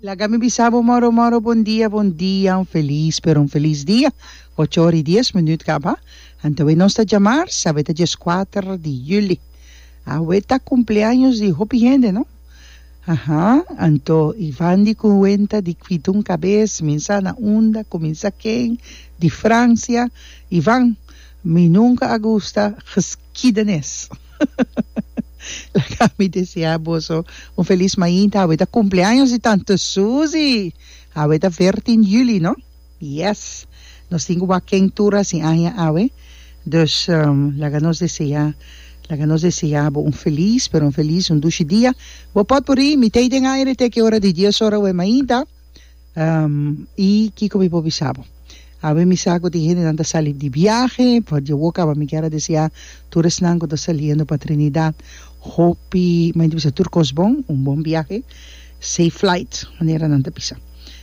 Laga mi bisa bo moro moro bon dia bon dia un feliz pero un feliz dia ocho ora y dies minüt kaba anto awey nos ta djamar sa awey ta dies kuater di juli awey ta kumpleaños di hopi hende no aha anto y van di kuwenta di kwidun kabes minsa na unda kuminsa ken di Francia y van mi nunka a gusta geskiedenis. Laga mi desea boso un felis mainta, awe ta cumpleaños di tante Suzy, awe ta veertien juli no, yes nos tin cu wak ken tur a si aña awe, dus laga nos desea laga nos desea bo un felis pero un felis un dushi dia, bo pot por ey mitey den aña ret eki ora di dies ora awe mainta. y kico mi por bisa bo? Awe mi sa cu tin gentenan ta sali di biahe, pa dje wok caba mi kier a desia tur esnan cu ta saliendo pa Trinidad hopi, mi ta bisa tur cos bon, un bon biahe, safe flight manera nan ta bisa,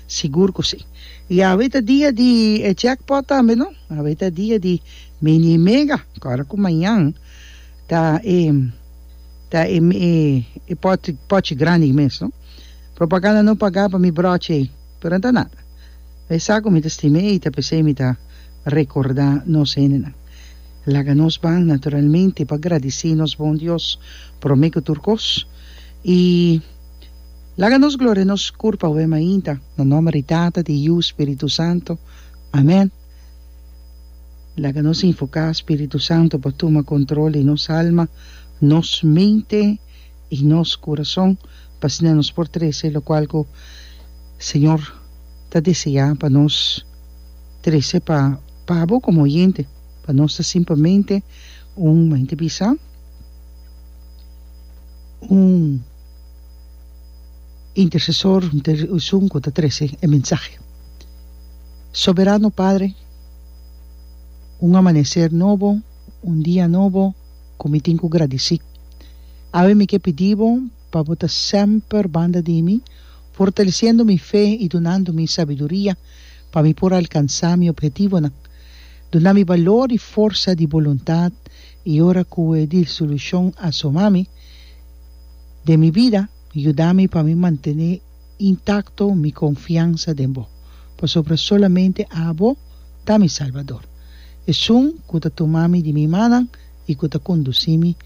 sigur cu si. Y awe ta dia di e jackpot tambe no, awe ta dia di mini y mega, ora cu mañan ta e ta e pochi grandi mes no. Propaganda no pagá pa mi brochi ei, pero no ta nada. E sa ku mi ta stima ei ta p'esei mi ta rekordá nos hendenan. Laga nos ban naturalmente pa gradisí nos bon Dios promé ku tur kos, i laga nos gloria nos kurp awe mainta. Na nòmber di Tata, di Yu, Spiritu Santu. Amèn. Laga nos invoká Spiritu Santu pa tuma kontrol di nos alma, nos mente. i nos kurason pa asina nos por trese lokual ku Señor ta deseá pa nos trese pa pa bo komo oyente, pa nos ta simplemente un mente bisa un intersesor un ter esun ku ta trese e mensahe. Soberano Padre un amaneser nobo un dia nobo. ku mi tin ku gradisí. Awe mi ke pidi bo pa bo ta semper banda di mi, fortalesiendo mi fe i dunando mi sabiduria pa mi por alkansá mi ophetivonan. Duna mi balor i forsa di boluntat i ora ku e desilushon a soma mi den mi bida, yuda mi pa mi mantené. Intacto mi confiansa den bo, pasobra solamente abo ta mi Salbador. Esun cu ta tuma mi di mi manan y cu ta conduci mi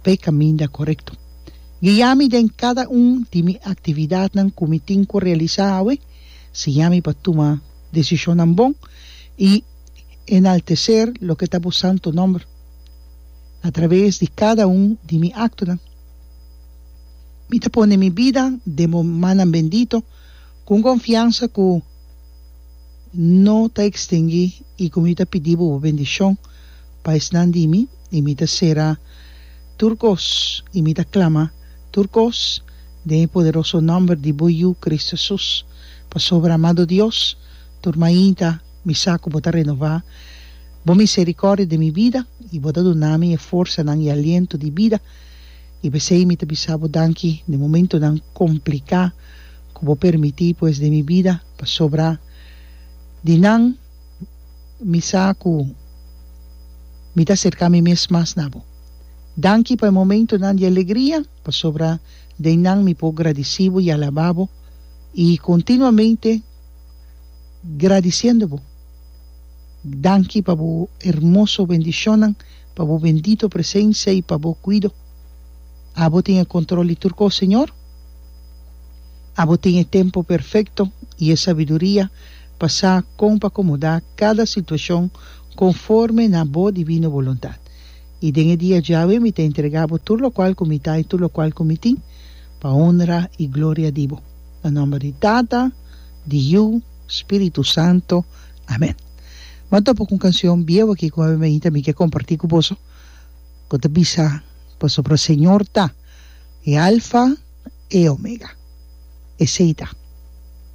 p'e caminda corecto. Guia mi den cada un di mi actividadnan cu mi tin cu realisa awe, siña mi pa tuma decisionnan bon y enaltecer loke ta bo santo nomber a traves di cada un di mi actonan. Mi ta pone mi bida den bo mannan bendito, ku un konfiansa ku no ta ekstinguí, i ku mi ta pidi bo bo bendishon pa esnan di mi, i mi ta sera tur kos, i mi ta klama tur kos den e poderoso nòmber di bo Yu, Kristu Hesus. Pasobra, amado Dios, tur mainta mi sa ku bo ta renová bo miserikòrdia den mi bida, i bo ta duna mi e forsanan i aliento di bida, I p'esei mi ta bisa bo danki den momentunan kompliká ku bo permití pues den mi bida, pasobra di nan mi sa ku mi ta aserká mi mes mas na bo. Danki pa e momentunan di alegria, pasobra den nan mi por gradisí bo i alabá bo, i kontinuamente gradisiendo bo. Danki pa bo hermoso bendishonnan. pa bo bendito presencia y pa bo cuido. Abo tin e control di tur cos, Señor. Abo tin e tempo perfecto y e sabiduria pa sa con pa acomoda cada situacion conforme na bo divino boluntad. Y den e dia djawe mi ta entrega bo tur locual cu mi ta y tur locual cu mi tin, pa honra y gloria di bo. Na nomber di Tata, di Yu, Spiritu Santo. Amen. Bo a topa ku un kanshon bieu aki ku ami ta bin ke kompartí ku boso ku ta bisa pasobra Señor ta e Alfa e Omega. Esei ta.